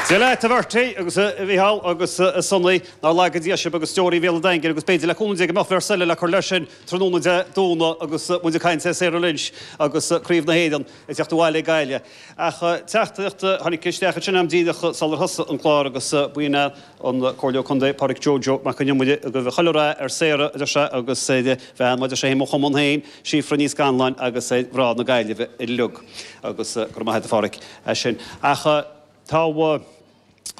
Dia leat a Bhertie agus a Mhícheál agus a Sonaí. Nár laga Dia sibh agus deoraí Bhéal an Daingin agus b'fhéidir le cúnamh Dé go mbeadh beirt eile le cur leis sin tráthnóna Dé Domhnaigh agus muid ag caint ar Sarah Lynch agus Craobh na hÉireann ag teacht abhaile ag Gaillimh. Ach teachtaireacht a tháinig isteach ansin am díreach sular thosaigh an clár agus bíonn an Comhairleoir Contae, Pádraig Joe Joe Mac Con Iomaire, ag guí chuile rath ar Sarah, a deir sé, agus ar an mbean, mar a deir sé féin, mo chumann féin, Síofra Ní Scanláin, agus ar mhná na Gaillimhe uilig. Agus go raibh maith agat, a Phádraig, as sin. Ach tá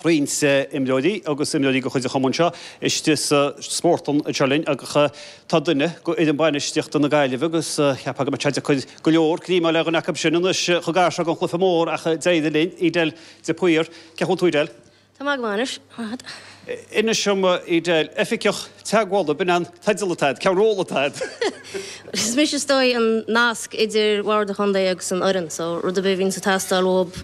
roinnt imreoirí agus imreoirí de chuid an chumainn seo istigh sa Spórt an tSathairn linn agus tá duine de fhoireann bainistíochta na Gaillimhe agus cheapfá go mbeadh sé deacair go leor greim a fháil ar dhuine acu sin anois chomh gar seo don chluiche mór ach d'éirigh linn. Edel de Paor, cén chaoi a bhfuil tú, Edel? Tá mé go maith anois. Inis dom Edel. Oifigeach Teagmhála, b'in an teideal atá agat, cén ról atá agat? Is mise, is dóigh, an nasc idir Bhord an Chontae agus an fhoireann. So, rud ar bith a bhíonn ag teastáil uathub,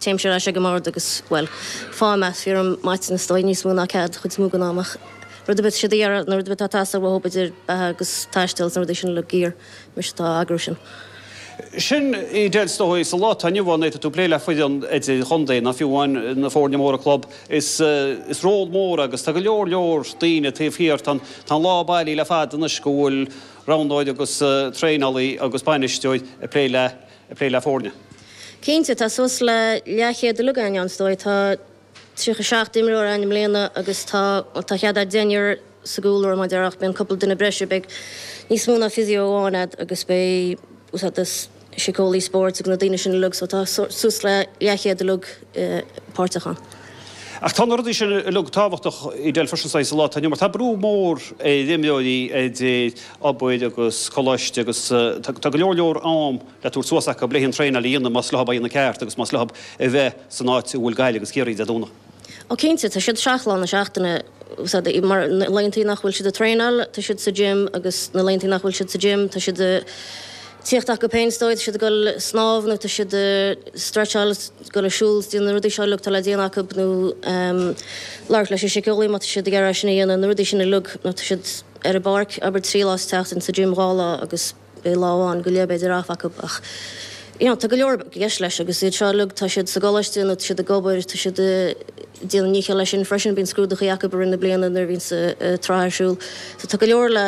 téimse ar ais ag an mbord agus, bhuel, faighim maithiúnas, is dóigh, níos mó ná cead, an chuid is mó den am ach rud ar bith, siad ag iarraidh, nó rud ar bith atá ag teastáil uathub idir beatha agus taisteal is na rudaí sin uilig, gear. Mise atá ag eagrú sin. Sin é, Edel, is dóigh sa lá atá inniu ann nuair atá tú ag plé le foireann idir-chontae, nó fiú amháin na foirne móra club. Is is ról mór agus tá go leor leor daoine taobh thiar. Tá an lá bailithe le fada anois go bhfuil roghnóir agus traenálaí agus bainisteoir ag plé le ag plé le foirne. Cinnte, tá suas le leathchéad uilig againn ann is dóigh. Tá 37 imreoir ann i mbliana agus tá thart ar deichniúr sa gcúlra abair ach bíonn cúpla duine breise beidh níos mó ná physio amháin a'd agus beidh úsáid as síceolaí spóirt agus na daoine sin uilig so tá suas le leathchéad uilig páirteach ann. Ach tá na rudaí sin uilig tábhachtach i dtaobh freisin saghas sa lá atá inniu mar tá brú mór ar imreoirí idir obair agus coláiste agus tá go leor leor am le tabhairt suas acu le haghaidh an traenáil a dhéanamh más leo é a dhéanamh ceart agus más leo a bheith san áit a bhfuil Gaillimh agus Ciarraí Dé Domhnaigh. Ó cinnte, tá siad seacht lá na seachtaine sa, mar na laethanta nach bhfuil siad ag traenáil, tá siad sa gym agus na laethanta nach bhfuil siad sa gym, tá siad ag tíocht acu féin is dóigh, tá siad ag dul ag snámh nó tá siad ag stretcháil, ag dul ag siúl, ag déanamh na rudaí seo uilig atá le déanamh acu nó ehm labhairt leis an síceolaí má tá siad ag iarraidh é sin a dhéanamh, na rudaí sin uilig nó tá siad ar an bpáirc abair trí lá sa tseachtain, sa gym dhá lá agus. Beidh lá amháin go léir b'fhéidir off acu ach yeah tá go leor i gceist leis agus iad seo uilig tá siad sa gcoláiste nó tá siad ag obair tá siad ag déanamh a ndícheall leis sin freisin bíonn scrúduchaí acu i rith na bliana nuair a bhíonns an tsraith ar siúl so tá go leor le